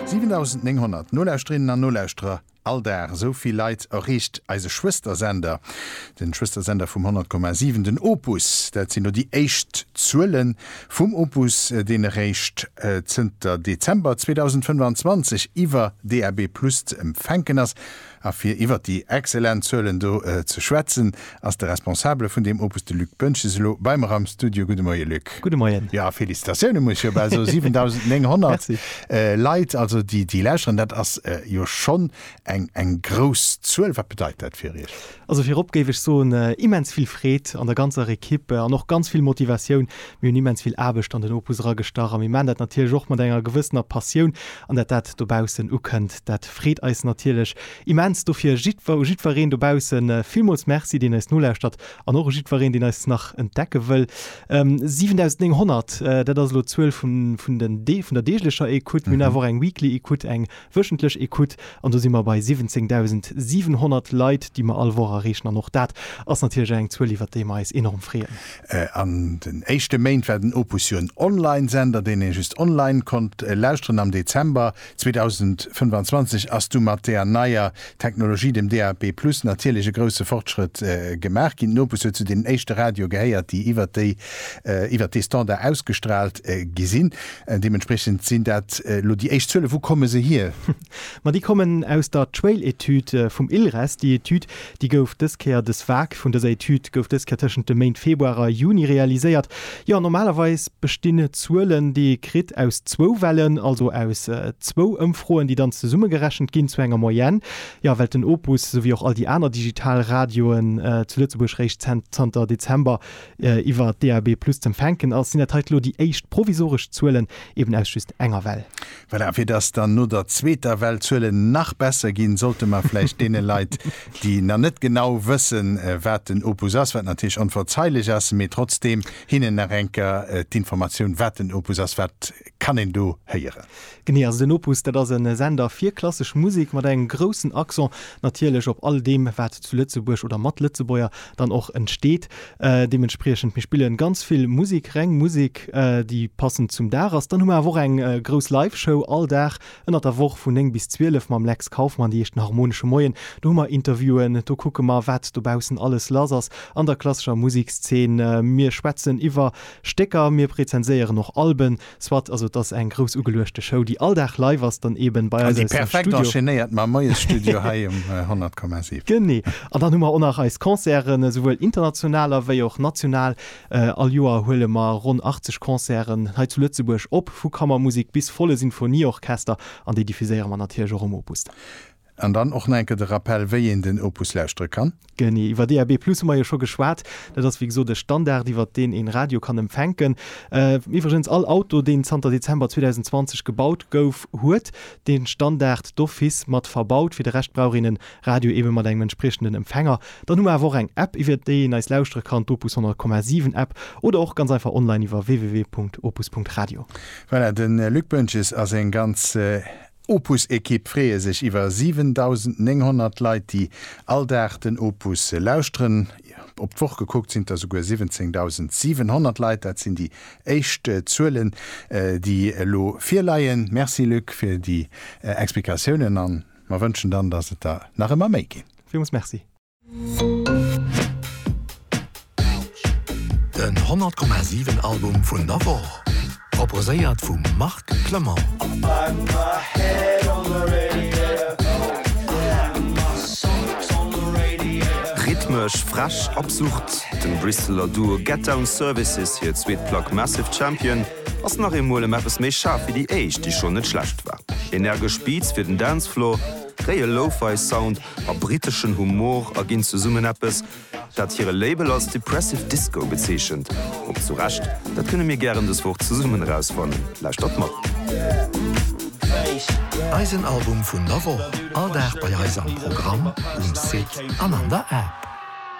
7900 Nolauschterinnen an Nolauschterer, all Dag esou vill Leit erreecht eise Schwëstersender, de Schwëstersender vum 100,7, den Opus. Dat sinn elo déi éischt Zuele vum Opus, deen eréischt zënter Dezember 2025 iwwer DAB+ ze empfänken ass. A fir iwwert déi exzellent Zuelen do ze schwätzen, ass de Responsabele vun deem Opus, de Luc Boentges, elo bei mer am Studio. Gudde Moie Luc. Gudde Moien. Jo, a Felicitatioune muss ech jo bal soen, 7.900 Leit also déi déi lauschteren, dat ass jo schonn eng eng grouss Zuel. Wat bedeit dat fir Iech? Also virop géif ech soen, immens vill Freed an der ganzer Equipe an och ganz vill Motivatioun. Mir hunn immens vill Aarbecht an den Opus eragestach a mir maachen dat natierlech och mat enger gewëssener Passioun. An dat dat dobaussen ukënnt, dat. Freet eis natierlech immens. Dofir jiddwer u jiddwereen dobaussen villmools Merci, deen eis nolauschtert an och u jiddwereen, deen eis nach entdecke wëll. 7.900, dat ass elo d'Zuel vun vun den Dee vun der deeglecher Écoute. Mir hunn awer och eng Weekly Écoute, eng wöchentlech Écoute an do si mer bei 17.700 Leit, déi mer all Woch erreechen an och dat ass natierlech eng Zuel, iwwert déi mer eis enorm freeën. An den éischte Méint war den Opus jo en Online-Sender, deen ee just online konnt lauschteren am Dezember. 2025 ass du mat där neier Technologie, dem DAB+ natierlech e grousse Fortschrëtt gemaach ginn. D'Nopes huet zu deenen éischte Radioe gehéiert, déi iwwert déi iwwert dee Standard ausgestraalt gi sinn. Deementspriechend sinn dat elo déi éischt Zuelen. Wou komme se hier? Ma déi kommen aus der Trail-Etüd vum ILRES. Déi Etüd Déi gouf dës Kéier, dës Vag vun dëser Etüd gouf dës Kéier tëschent de Méint Februar a Juni realiséiert. Jo, normalerweis bestinn d'Zuelen, déi ee kritt, aus zwou Wellen, also aus zwou Ëmfroen, déi dann zesummegerechent ginn zu enger Moyenne. Jo, well den Opus, esou wéi och all déi aner digital Radioen zu Lëtzebuerg réischt zanter Dezember iwwer DAB+ z'empfänken ass, sinn dat hei elo déi éischt provisoresch Zuelen, eben aus just enger Well. Voilà, fir dass dann no der zweeter Well d'Zuelen nach besser ginn, sollte mer vläicht deene Leit, déi nach net genau wëssen, wat den Opus ass, wat natierlech onverzeilech ass, mee trotzdeem hinnen nach eng Kéier d'Informatioun, wat den Opus ass, wat kann een do héieren? Genee, also den Opus, dat ass e Sender fir klassesch Musek mat engem groussen Accent natierlech op all deem, wat zu Lëtzebuerg oder mat Lëtzebuerger dann och entsteet. Deementspriechend, mir spillen ganz vill Musik, reng Musik, déi passend zum Dag ass. Dann hu mer awer och eng grouss Live-Show all Dag ënnert der Woch vun 9 bis 12 mam Lex Kauffmann, déi heescht den Harmonesche Moien. Do hu mer Interviewen, do kucke mer, wat dobaussen alles lass ass an der klassescher Musekszeen. Mir schwätzen iwwer Stécker, mir rezenséieren och Alben, Soit, also et ass eng grouss ugeluechte Show, déi all Dag live ass, dann eben bei eis aus dem Studio. An déi perfekt enchaînéiert mam Moiesstudio hei um 100,7. Genee. An dann hu mer och nach eis Concerten, esouwuel international ewéi och national. All Joer huele mer ronn 80 Concerten hei zu Lëtzebuerg op, vu Kammermusek bis volle Sinfonieorchester, an déi diffuséiere mer natierlech och um Opus dann. An dann och nach eng Kéier de Rappell, wéi een den Opus lauschtere kann. Genee, iwwer DAB+ hu mer jo scho geschwat. Dat ass, wéi gesot, e Standard, iwwer deen een Radio kann empfänken. Iwwregens, all Auto, deen zanter Dezember 2020 gebaut gouf, huet de Standard d'office mat verbaut. Fir de Rescht brauch een e Radio eebe mat engem entspriechenden Empfänger. Dann hu mer awer och eng App, iwwer déi een eis lauschtere kann, d'Opus 100,7 App, oder och ganz einfach online iwwer www.opus.radio. Voilà, de Luc Boentges ass eng ganz. Opus-Ekipp freeë sech iwwer 7.900 Leit, déi all Dag den Opus lauschteren. Op d'Woch gekuckt sinn et der souguer 17.700 Leit. Dat sinn déi éischt Zuelen, déi elo virleien. Merci Luc fir déi Explikatiounen a mer wënschen dann, datt et der nach ëmmer méi ginn. Villmools Merci. Den 100 Komma 7 Album vun der Woch, proposéiert vum Marc Clement. Rhythmesch frech, absurd, dem Bristeler Duo Get Down Services hir zweet Plack Massive Champion ass nach eemol ëm eppes méi schaarf wéi déi éischt, déi schonn net schlecht war. Energesch Beats fir den Dancefloor, réie Lo-Fi Sound a briteschen Humor a ginn zesummen eppes, dat hire Label als Depressive Disco bezeechent. Ob zu Recht? Dat kënne mir gären dës Woch zesummen erausfannen. Lauschtert mat! Eisen Album vun der Woch, all Dag bei eis am Programm, um Site an an der App.